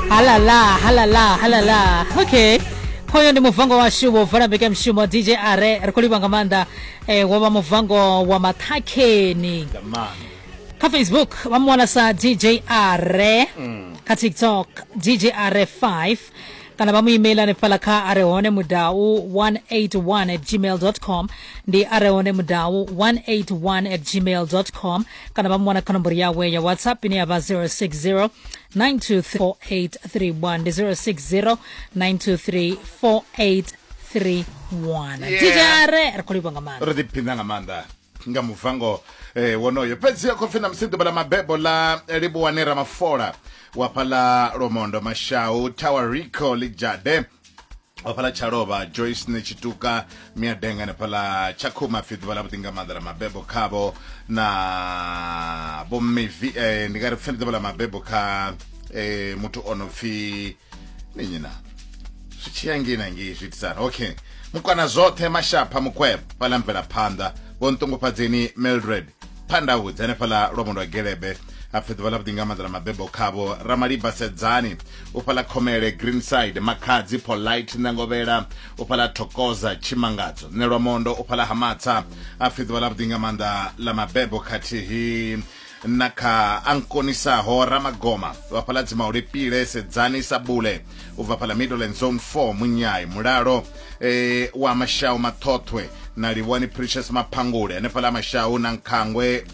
halala halala halala okay hoyo ndi muvango washu wovala mbike mshumo dj are ri khou livha nga maanḓa eh, wo vha muvango wa mathakheni kha facebook vha mu wana sa dj are kha tiktok dj are 5 kana vha mu email hanefhala kha are hone mudau 181 at gmail com ndi are hone mudau 181 at gmail com kana vha muwana kha nomboro yawe ya whatsapp ine ya vha 060 9234831 ndi 060 9234831 Yeah. dj are ri khou livha nga maanḓa ri ḓiphina nga maanḓa nga muvango eh, wonoyo fhedzi khou pfi na musi ḓuvha ḽa mabebo ḽa livhuwane ramafola wa phala lomondo mashau tower rico lijade hafhaḽa tshalovha joyce ne tshituka miadenga hanefhaḽa tshakhuma pfi ḓuvha ḽa vhuḓi nga maanḓa ḽa mabebo khavho na vhomivi eh, ndi nga ri pfeni ḓuvha ḽa mabebo kha eh, muthu o no pfi ninyina zwi tshiya ngei na ngei zwi itisana okay mukwana zwoṱhe mashapha mukwebo fhaḽa mvelaphanḓa vho nṱungufhadzeni mildred phanḓa hudzi hanefhala lwa mondo wa gelebe apfe ḓuvha ḽa vhuḓi nga maanḓa na mabebo khavho ramaliba sedzani u fhala khomele greenside makhadzi polite ṋangovhela u fhala thokoza tshimangadzo nṋe lwa mondo u fhala hamatsa apfe ḓuvha ḽa vhuḓi nga maanḓa ḽa mabebo khathihi na kha a nkonisaho ramagoma vhafhaladzi maulipile sedzani sabule u bva fha ḽa middleland zone 4 munyai mulalo e, wa mashau maṱhoṱhwe na livhuwani precious maphangule hanefha ḽa mashau na nkhangwe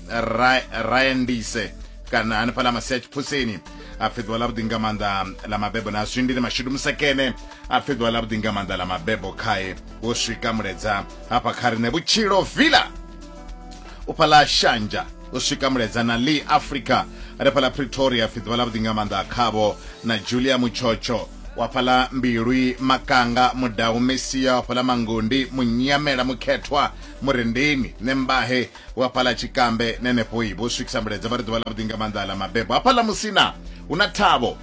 rayandise ra kana hanefha ḽa masia tshiphusini a pfhi ḓuvha ḽa vhuḓi nga maanḓa ḽa mabebo na zwindi ni mashudu musekene a pfhi ḓuvha ḽa vhuḓi nga maanḓa ḽa mabebo khae wo swika muledza hafha kha riṋe vhutshilo villa u fhaḽa shanja u swika muledza na lee africa ri fhaḽa pretoria pfi ḓuvha ḽa vhuḓi nga maanḓa khavho na julia mutshotsho wa fhaḽa mbilwi makanga mudau mesia wa fhaḽa mangundi munyamela mukhethwa murendeni nembahe wa fhaḽa tshikambe nenefho i vho swikisa muledza vha ri ḓuvha ḽa vhuḓi nga maanḓa ḽa mabebo hafhaḽa musina hu na thabo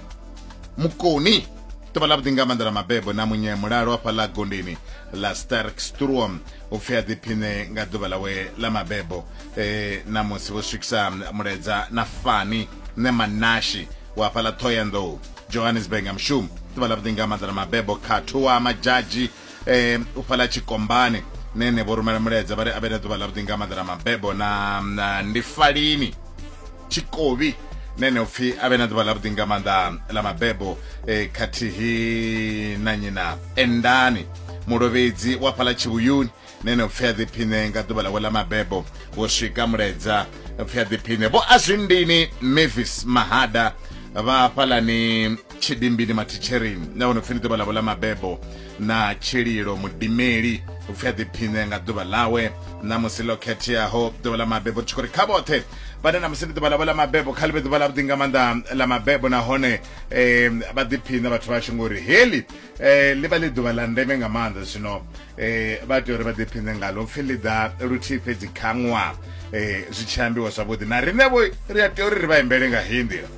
mukoni ḓuvha ḽa vhuḓi nga maanḓa ḽa mabebo na munye mulalo wa fhaḽa gondeni la stark struom upfi a ḓiphine nga ḓuvha ḽawe ḽa mabebo eh, na musi vho swikisa mulaedza na fani ne manashi wa fhala thoyandou johannesburg nga mushumo ḓuvha ḽa vhuḓi nga maanḓa na mabebo khathu wa madzhadzhi eh, u fhala tshikombani nene vho rumela mulaedza vha ri a vhe na ḓuvha ḽa vhuḓi nga maanḓa na mabebo na, na ndi falini tshikobi na ene upfi a vhe na ḓuvha ḽavhuḓi nga maanḓa ḽa mabebo eh, khathihi na nyi na endani mulovhedzi wa fhaḽa tshivhuyuni na ene upfi a ḓiphine nga ḓuvha ḽawe ḽa mabebo wo swika muledza upfi a ḓiphine vho azwindini mavis mahada vha fhalani tshidimbi mathitsheri na vho no pfi ndi ḓuvha ḽavho ḽa mabebo na tshililo mudimeli u pfi a ḓiphiṋe nga ḓuvha ḽawe na musi ḽo khetheaho ḓuvha ḽa mabebo tshi khou ri kha vhoṱhe vhane na musi ndi ḓuvha ḽavho ḽa mabebo kha ḽi vhe ḓuvha ḽavhuḓi nga maanḓa ḽa mabebo nahone um vha ḓiphiṋe vhathu vhashu ngori heḽi um ḽi vha ḽi ḓuvha ḽa ndeme nga maanḓa zwino um vha tea uri vha ḓiphiṋe ngalo pfi ḽi ḓa luthihi fhedzi kha ṅwaha um zwi tshi ambiwa zwavhuḓi na riṋevho ri a tea uri ri vha imbele nga heyi nḓila